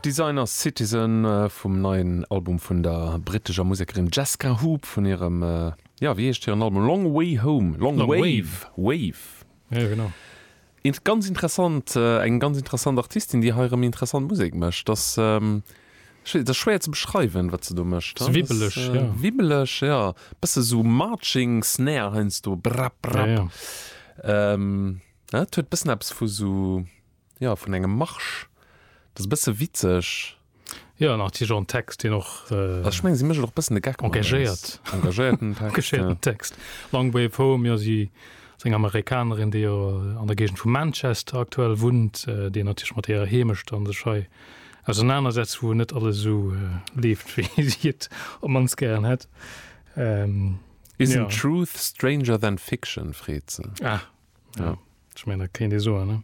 Designer Citizen vum neien Album vun der brittescher Musekerin Jesca Hoop vun hirem, jo, wéi heescht hiren Album, Long Way Home, Long Wave, Wave, jo genau, int, ganz interessant, eng ganz interessant Artistin, déi hei erëm interessant Musek mécht. Ass, ech wéi, et ass schwéier ze beschreiwen, wat se do mécht. Ass wibbeleg, jo. Wibbeleg, jo, bësse sou Marching Snare heiansdo, brapp, brapp, jo, jo. Et huet bëssen eppes vu sou. Jo vun engem Marsch dat ass e bësse witzeg. Jo an natierlech och en Text deen och. Also ech mengen si méchen och e bëssen de Geck mat eis. Engagéiert. Engagéierten Text, jo. Engagéierten Text. Long Way Home, jo si ass eng Amerikanerin déi jo an der Géigend vu Manchester aktuell wunnt, déi natierlech mat hirer Heemecht dann sech hei ausernaner setzt wou net alles esou leeft wéi si et op d'mannst gären hätt. Isn't truth stranger than fiction? freet se. Ah Ja, ech mengen, dat kéint ee soen, ne?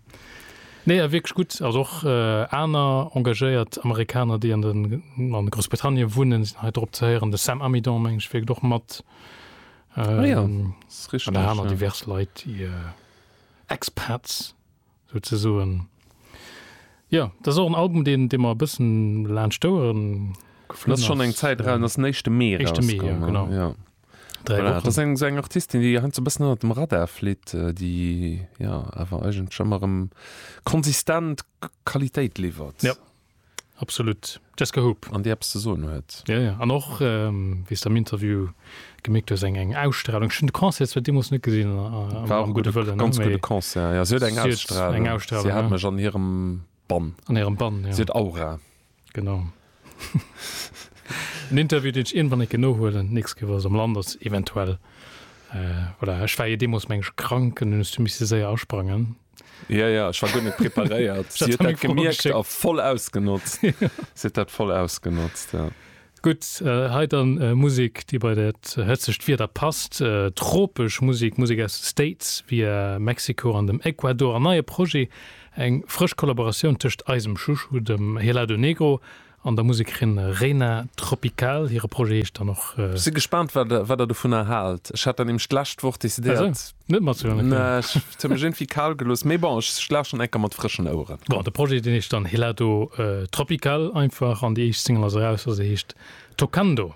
Nee, awer wierklech gutt. Also och aner engagéiert Amerikaner, déi an Groussbritannien wunnen, sinn hei drop ze héieren. De Sam Amidon, mengen ech, wierkt och mat. Ah ja, dat ass richteg. An der aner divers Leit, déi Expats souzesoen. Jo, dat ass och en Album, deen mer e bëssen laanscht d'Ouere geflunn ass. Dat ass schonn eng Zäit eraus, dat ass den éischte Mee erausgoung. Éischte Mee, jo, genau. Dräi Wochen. Dat ass eng Artistin, déi heiansdo e bëssen ënnert dem Radar flitt, déi jo awer eigentlech ëmmer erëm konsistent Qualitéit liwwert. Ja, absolut. Jesca Hoop. An déi eppes ze soen huet. Jo, jo. An och, wéi s de am Interview gemierkt hues, eng, eng Ausstralung. Ech hunn de Concert zwar deemools net gesinn, am gudde Wëllen, ne, mee. War e gudde Concert, jo. Si huet eng Ausstralung. Si huet eng Ausstralung, ja. Si hat mech an hirem. Bann. An hirem Bann, ja. Si huet Aura. Genau. En Interview, deen ech iergendwann-eke nohuelen. Nix gëf ass am Land, ass eventuell, voilà. Ech war jo deemoos, meng ech, krank an hunn ech du misse séier asprangen. Ja, ja, ech war guer net preparéiert. Si huet dat gemierkt a voll ausgenotzt. Si huet dat voll ausgenotzt, ja. Gutt, hei dann Musek, déi bei dat hëtzegt Wieder passt. Tropesch Musek, Musek aus de States, via Mexiko an dem Ecuador. En neie Projet, eng frësch Kollaboratioun tëscht eisem Chouchou, dem Helado Negro, an der Musekerin Reina Tropical. Hire Projet heescht dann och. Ech si gespaant, wat Der dovunner haalt. Ech hat der nämlech d'lescht Woch decidéiert. Net mat ze huelen. Nee, ech hun mech iergendwéi kal gelooss, mee bon, ech lauschteren enker mat frëschen Oueren. Bon, de Projet, deen heescht dann Helado Tropical einfach an déi éischt Single ass eraus a se heescht Tocando.